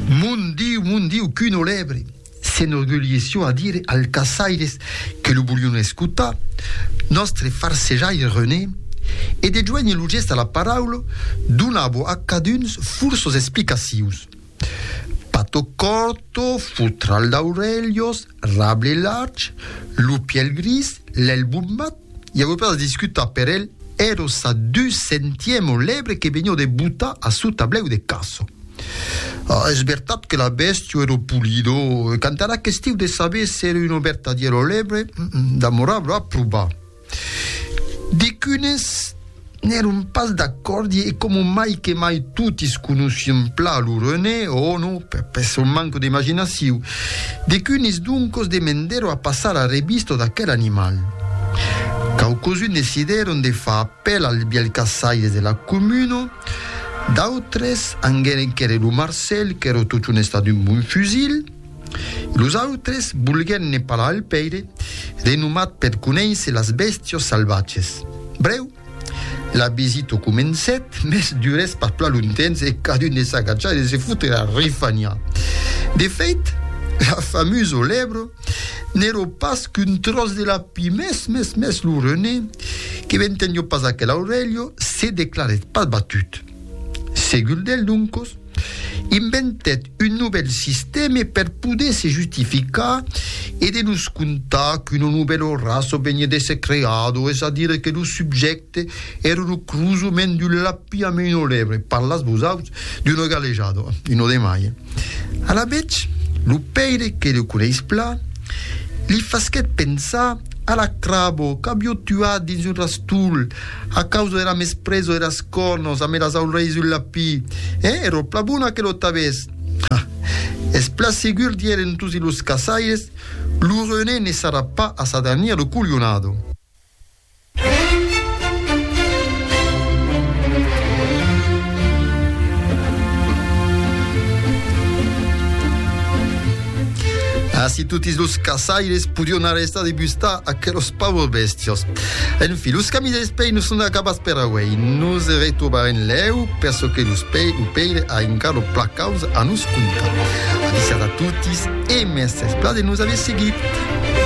Mon Diu, mon Diu, qu'un olèbre! s'enorgulheisson a dire als caçaires que lo volion escotar, nòstre farsejaire René, e de joénher lo gèst a la paraula, donava a caduns furços explicacions. Pato Corto, Fotral d'Aurelios, Rable Large, Lupièl Gris, Lèl Bombat, I aguò pas a discutar per el, ero sa du centièmo lebre que venió de botar a su tablèu de caço. Ah, es vertat que la bèstio ero pulido, e quant ara questiu de saber s'ero uno vertadiero lebre, damorava a probar. Dicunes. N'èron pas d'acòrdi e coma mai que mai totis conoscion plan lo René, ò non, per per son manco d'imaginaciu, decunis doncos demendèro a passar a revistò d'aquel animal. Quauquosun decidèron de far apèl als bièlhs caçaires de la comuna, d'autres anguèren quèrre lo Marcèl qu'èro totun estat un bon fusil, Los autres volguèn ne parlar al pèire, renomat per conéisser las bèstias salvatges. Brèu, la visita comencèt, mès durèt pas plan longtemps e cadun ne s'agatjà de se fóuter a refanhar. De fait, la famusa lèbra n'èra pas qu'un tròç de lapí, mès, mès, mès, lo René, que ventendiá pas aquela aurelha, se declarèt pas batut. Segur del doncos, inventèt un novèl sistème per poder se justificar e de nos contar qu'una novèla raça veniá d'èsser creada, es a dire que lo subjècte èra lo crosament d'un lapin amb una lèbre, parlatz vosaus, d'una galejada, una de mai. Alavetz, lo pèire que le coneis plan, li fasquèt pensar a la crabo qu'aviá tuat dins un rastol, A causa era mesprezo eras cornos a meras aulrei sul lapí, e ero pla bona que lo tabés. Ha! Es pla segur, dierén tosi los caçaires, lo René ne sarà pas a sa dernier lo colionado. Ací totis los caçaires podion arrestar de bustar aquelos paures bestios. En fi, los camis dels pei non son acabats per auei. Nos e retrobarem lèu per çò que los pei o peile a encara lo placaus a nos contar. Avisiat a totis e mès esplà de nos aver seguit!